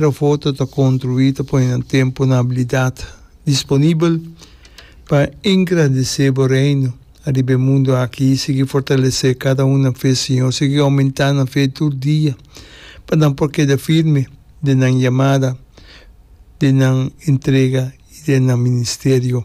Rafoto ta construí ta pone nan tempo na habilidad disponibel pa engrandecé Bo Reino ariba e mundo aki. Sigui fortalecé cada un nan fe, Señor. Sigui aumentá nan fe tur dia pa nan por keda firme den nan yamada, den nan entrega i den nan ministerio.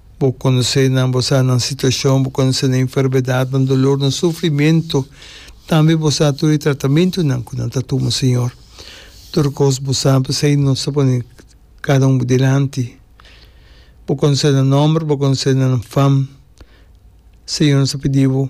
Bo konosé nan, bo sa nan situashon, bo konosé nan enfermedad, nan dolor, nan sufrimentu, tambe bo sa tur e tratamentunan ku nan ta tuma, Señor. Tur kos bo sa, p'esei nos ta pone kada un bo dilanti. Bo konosé nan nòmber, bo konosé nan fam, Señor, nos ta pidi bo.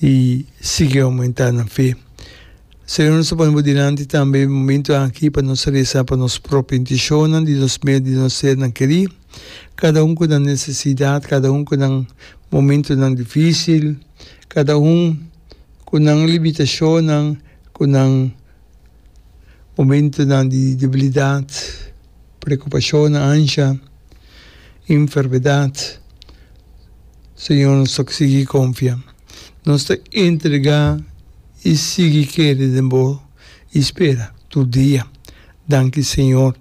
y sigui aumenta nan fe. Señor nos ta pone bo dilanti tambe momento aki pa nos resa pa nos propio intencionnan di nos mier di nos ser nan keri, cada un cu nan necesidad, cada un cu nan momentonan dificil, cada un cu nan limitacionnan, cu nan momentonan di debilidad. Preokupashonnan ansha, enfermedad, Señor nos ta sigui konfia. Nos ta entregá i sigui kere den Bo i spera tur dia. Danki Señor.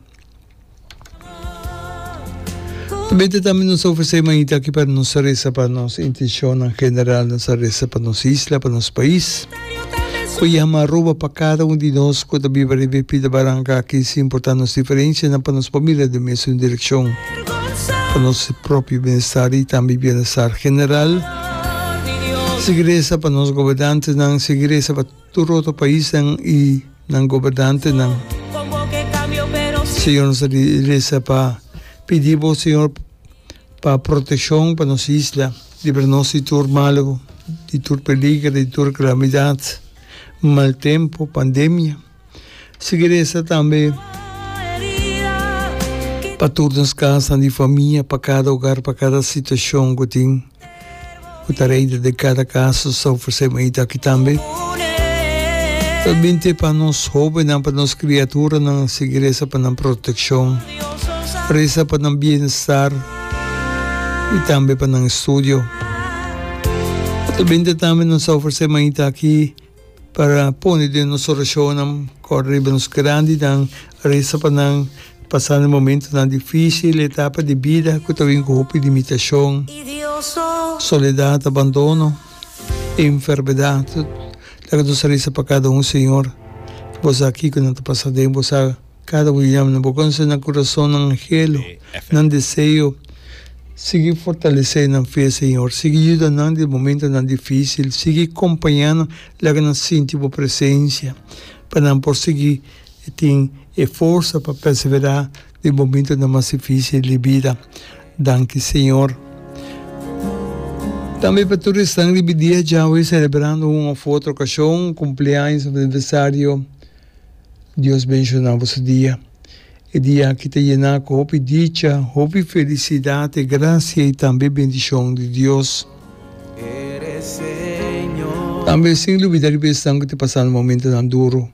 Tabata tambe nos ta ofresé manita aki pa nos resa pa nos intishonnan general, nos a resa pa nos isla, pa nos pais. Cu yama Aruba pa cada un di nos cu ta biba riba e pita baranca aki sin importa nos diferencianan pa nos pamilia den mesun direccion, pa nos propio bienestar y tambe bienestar general. Sigui reza pa nos gobernantenan, sigui reza pa tur otro paisnan y nan gobernantenan. Señor, nos ta reza pa pidi bo Señor Pa proteccion pa nos isla. Libra nos di tur mal, di tur peliger, di tur calamidad, mal tempo, pandemia. Seguir esta tambe pa tur nos casnan di famia, pa cada hogar, pa cada situacion cu tin. ku ta reinta den kada kaso ta ofresé un eita aki tambe. Ta bin te pa nos hóbennan, pa nos kriaturanan sigui resa pa nan protekshon, resa pa nan bienestar i tambe pa nan estudio. Ta bin te tambe nos ta ofresé un eita aki. pa pone den nos orashonnan kor riba nos grandinan, resa pa nan pasando momentonan difísil, etapa di bida ku ta bin ku hopi limitashon, soledat, abandono i enfermedat. Laga nos a resa pa kada un, Señor, bo sa kiko nan ta pasa den, bo sa. Kada un yam na bo konse na kurasonnan helu nan deseo. Sigui fortalesé nan fe, Señor. Sigui yuda nan den momentonan difísil. Sigui kompañá nan, laga nan sinti bo presensia, pa nan por sigui tin e forsa pa perseverá den momentonan mas difísil di bida. Danki, Señor. Tambe pa tur esnan riba e dia djawe selebrando un òf otro okashon, kumpleaños òf aniversario. Dios benshoná bo su dia. E dia aki ta yená ku hopi dicha, hopi felisidat, e grasia i tambe e bendishon di Dios. Tambe sin lubidá riba esnan ku ta pasando momentunan duru,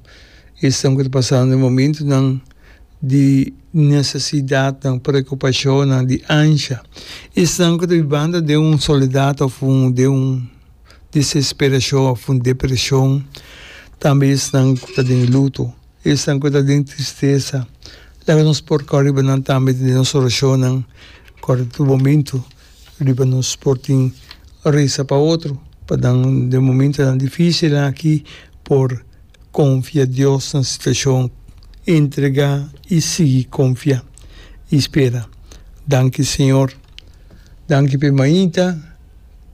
esnan ku ta pasando momentunan di nesesidatnan, preokupashonnan, di ansha, esnan ku ta bibando den un soledat òf den un desesperashon of un depreshon, tambe esnan ku ta den luto, esnan ku ta den tristesa, laga nos por kau riba nan tambe den nos orashonnan, kor tur momentu riba nos por tin resa pa otro, pa nan den momentunan difisilnan aki por konfia Dios na situashon, entregá i sigui konfia i spera. Danki Señor, danki p'e mainta.